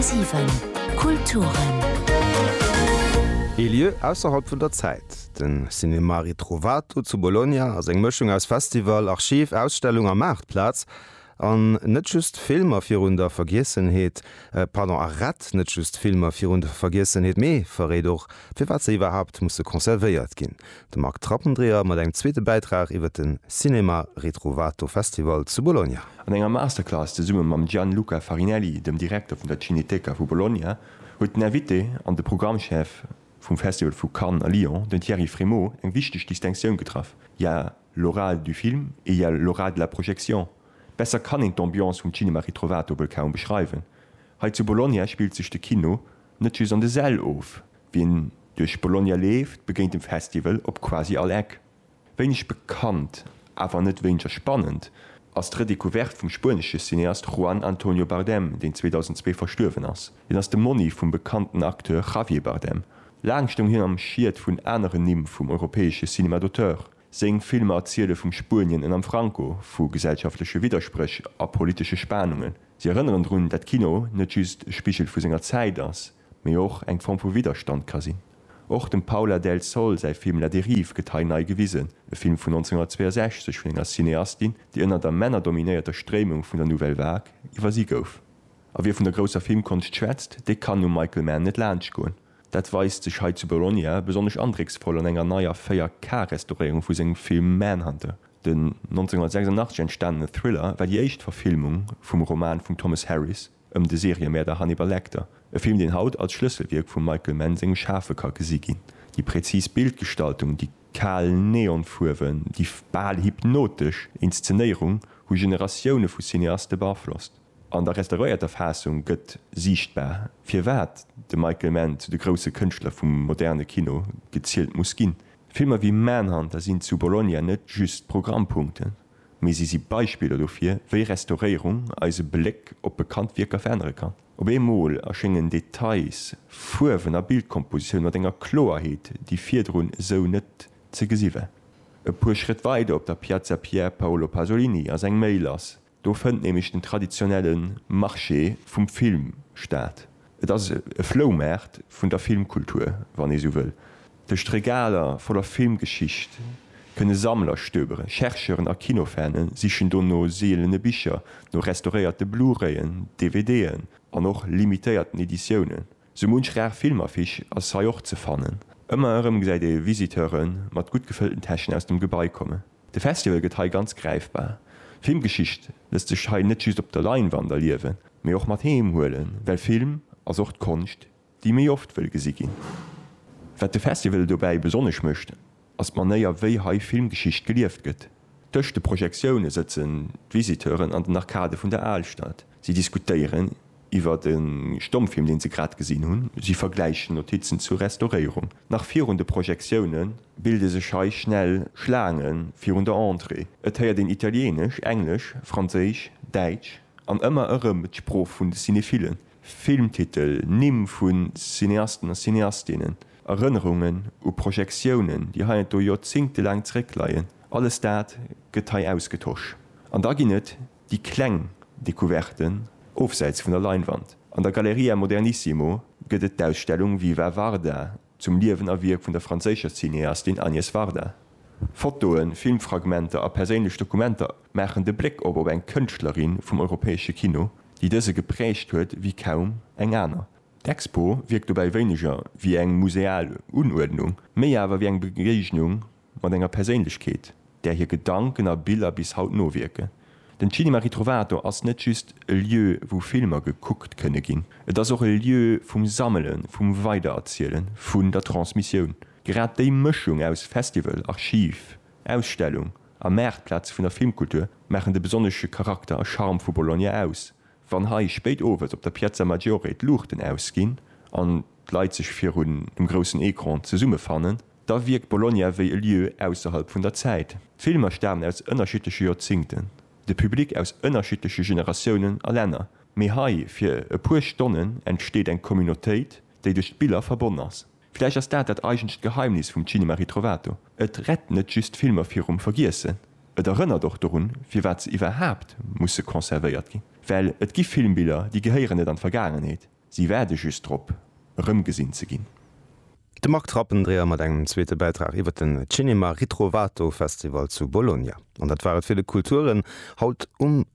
10,7 Kulturen. Ee Lieu ausserhalb vun der Zäit, den Cinema Ritrovato zu Bologna ass eng Mëschung aus Festival, Archiv, Ausstellung a Maartplaz. An net just Filmer virun der Vergiessenheet, pardon, a rett net just Filmer virun der Vergiessenheet, mee verréit och, firwat se iwwerhaapt musse conservéiert ginn. De Marc Trappendreher mat engem zweete Bäitrag iwwer de Cinema Ritrovato Festival zu Bologna. An enger Masterclass zesumme mam Gianluca Farinelli, dem Direkter vun der Cineteca vu Bologna, huet den Invité an de Programmchef vum Festival vu Cannes a Lyon, den Thierry Frémaux, eng wichteg Distinctioun getraff, il y a l'oral du film et il y a l'oral de la projection. Besser kann een d'Ambiance vum Cinema Ritrovato wuel kaum beschreiwen. Hei zu Bologna spillt sech de Kino net just an de Säll of, Wien duerch Bologna leeft, begéint dem Festival op quasi all Eck. Wéineg bekannt, awer net wéineger spannend, ass d'Redecouverte vum spuenesche Cineast Juan Antonio Bardem, deen 2002 verstuerwen ass. Hien ass de Monni vum bekannten Acteur Javier Bardem. Laang stoung hien am Schiet vun aneren Nimm vum europäesche Cinéma d'auteur. Seng Filmer erziele vum Spuenien ënnerm Franco, vu gesellschaftleche Widderspréch a politesche Spanungen. Si erënneren drun, dat Kino net just e Spigel vu senger Zäit ass, mee och eng Form vu Widderstand ka sinn. Och dem Paula del Sol säi Film La dérive gëtt hei nei gewisen, e Film vun 1962 vun enger Cineastin, déi ënner der männerdominéierter Stréimung vun der Nouvelle Vague iwwersi gouf. A wie vun der grousser Filmkonscht schwätzt, dee kann um Michael Mann net laanscht goen. Dat weist sech hei zu Bologna besonnesch andrécksvoll an enger neier 4K-Restauréierung vu sengem Film Manhunter. Den 1986 entstanene Thriller war déi éischt Verfilmung vum Roman vum Thomas Harris. ëm de Seriëmäerder Hannibal Lecter, e Film deen haut als Schlësselwierk vum Michael Mann sengem Schafe ka gesi ginn. Déi präzis Bildgestaltung, déi kal Neonfuerwen, déi bal hypnotesch Inszenéierung hu Generatioune vu Cineaste beaflosst. An der restauréierter Faassung gëtt siichtbar, firwat de Michael Mann zu de grousse Kënschtler vum moderne Kino gezielt muss ginn. Filmer wéi Manhunter sinn zu Bologna net just Programmpunkten. mee si si Beispiller dofir, wéi Restauréierung eise Bléck op bekannt Wierker verännere kann. Op eemol erschéngen Details, Fuerwen a Bildkompositioun mat enger Kloerheet, déi virdrun esou net ze gesi war. E puer Schrëtt weider op der Piazza Pier Paolo Pasolini ass eng méi lass, do fënnt nämlech den traditionelle Marché vum Film statt, Et ass e Floumaart vun der Filmkultur, wann ee sou wëll. Duerch d'Regaler voller Filmgeschicht kënne Sammler stöberen. Chercheuren a Kinofane sichen do no seelene Bicher, no restauréierte Blu-rayen, DVDen an och limitéierten Editiounen. Sou munch rar Filmaffiche ass hei och ze fannen. Ëmmer erëm gesäit ee Visiteure mat gutt gefëllten Täschen aus dem Gebai kommen. De Festival gëtt hei ganz gräifbar. Filmgeschicht lësst sech hei net just op der Leinwand erliewen, mee och mat heem huelen, well Film ass och d'Konscht, déi méi oft wëll gesi ginn. Wat de Festival dobäi besonnesch mécht, ass d'Manéier, wéi hei Filmgeschicht gelieft gëtt. Tëscht de Projektioune sëtzen d'Visiteuren an den Arkade vun der Alstad. Si diskutéieren iwwert e Stommfilm, deen se grad gesinn hunn. Si vergläichen Notizen zur Restauréierung. Nach virun de Projektioune bilde sech hei schnell Schlaange virun der Entrée. Et héiert een Italieenesch, Englesch, Franséisch, Däitsch an ëmmer erëm d'Sprooch vun de Cinephilen, Filmtitel, Nimm vu Cineasten a Cineastinnen, Erënnerungen u Projektiounen, déi heiansdo joerzéngtelaang zeréckleien. Alles dat gëtt hei ausgetosch. An da ginn et Déi kleng Decouverte ofsäits vun der Leinwand. An der Galleria Modernissimo gëtt et d'Ausstellung Viva Varda zum Liewen a Wierk vun der franséischer Cineastin Agnès Varda. Fotoen, Filmfragmenter a perséinlech Dokumenter maachen de Bléck op op eng Kënschtlerin vum europäesche Kino, déi dëse geprägt huet wéi kaum eng aner. D'Expo wierkt dobäi wéineger wéi eng museal Unuerdnung, méi awer wéi eng Begéignung mat enger Perséinlechkeet, där hir Gedanken a Biller bis haut nowierken. Den Cinema Ritrovato ass net just e Lieu, wou Filmer gekuckt kënne ginn. Et ass och e Lieu vum Sammelen, vum Weidererzielen, vun der Transmissioun. Grad déi Mëschung aus Festival, Archiv, Ausstellung a Maartplaz vun der Filmkultur maachen de besonnesche Charakter a Charme vu Bologna aus. Wann hei spéit owes op der Piazza Maggiore d'Luuchten ausginn an d'Leit sech virun dem groussen Ecran zesummefannen, da wierkt Bologna wéi e Lieu ausserhalb vun der Zäit. D'Filmer stamen aus ënnerschiddleche Joerzingten, de Public aus ënnerschiddleche Generatiounen a Länner, mee hei fir e puer Stonnen entsteet eng Communautéit, déi duerch d'Biller verbonn ass. Villäicht ass dat dat eigentlecht Geheimnis vum Cinema Ritrovato, et rett net just d'Filmer virum Vergiessen, et erënnert och dorun, firwat se iwwerhaapt musse conservéiert ginn, well et gi Filmbiller, déi gehéieren net an d'Vergaangenheet. Si waarde just drop, erëmgesinn ze ginn. De Marc Trappendreher mat engem zweete Bäitrag iwwer den Cinema Ritrovato Festival zu Bologna. An dat war et fir de Kulturen haut um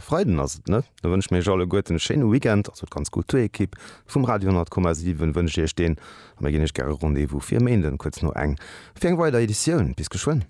Freiden, ass et net? Da wënsche mir iech alleguerten e schéine Weekend, also d'ganz Kulturekipp vum Radio 100,7 wënscht iech deen a mir ginn iech gäre Rendez-vous fir e Méinden kuerz no eng fir eng weider Editioun. Bis geschwënn.